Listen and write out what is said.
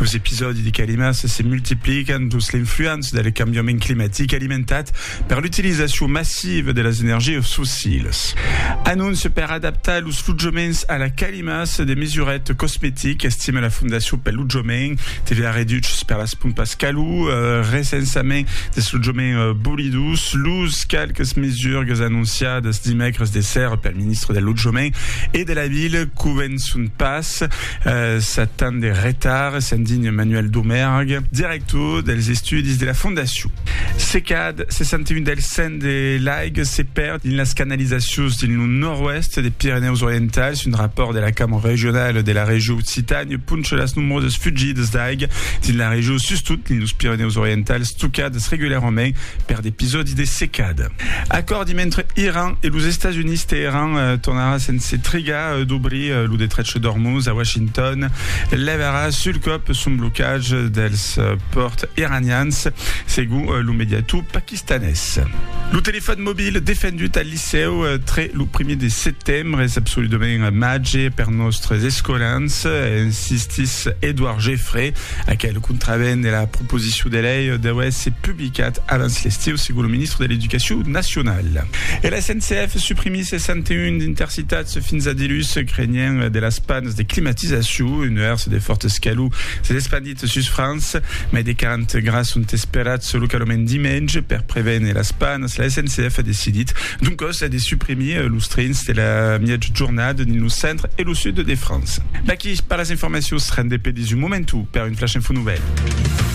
Los episòdi de calimas se multiplican dins l'influença del cambiament climatic alimentat per l'utilizacion massiva de las energias fossilas. Anóncia per adaptar los lotjaments a la calimas de mesuret cosmetic, estima la Fondacion pel Lotjament, TVA reduchs per las pompas calor, recensament dels lotjaments bolidos, los qualques mesurgas anonciadas dimècres de ser pel ministre del Lotjament e de la Vila convençon pas. 7 ans de retard, s'indigne Manuel Domergue, director dels estudis de la fondacion. Se cad 61 del 100 de l'aiga se perd dins las canalizacions dins lo nòrd-oèst de Pirenèus Orientals, un rapòrt de la Cambra Regionala de la Region Occitània poncha las nombrosas fugidas d'aiga dins la region, sustot dins los Pirenèus Orientals, tocadas regularament per d'episòdis de secada. Acòrdi mentre Iran e los Estats Units Teheran tornarà sense trigar d'obrir lo detrech d'Ormuz a Washington levarà sul còp son blocatge dels pòrts iranians segon lo mediator paquistanés. Lo telefòn mobil defendut al licèu tre lo primièr de setembre es absoludament màger per nòstres escolans, insistís Edouard Geffray, aquel contravent de la proposicion de lei deu èsser publicada Qu'ath avanç l'estiu, segon lo ministre de l'Educacion nacionala. E la SNCF suprimís 61 d'intercitats fins a dilús, crenhent de las panas de climatizacion. Un nuèrs de fòrt escalor s'es espandit sus França. Mai de 40 grads sont esperats localament dimenge. Per prevéner las panas, la SNCF a decidit, doncòs, de suprimir los trens de la mièja jornada dins lo centre e lo sud de França. D'aquí pas las informacions rendent de pedis un momentu per un Flash Info Nouvèl.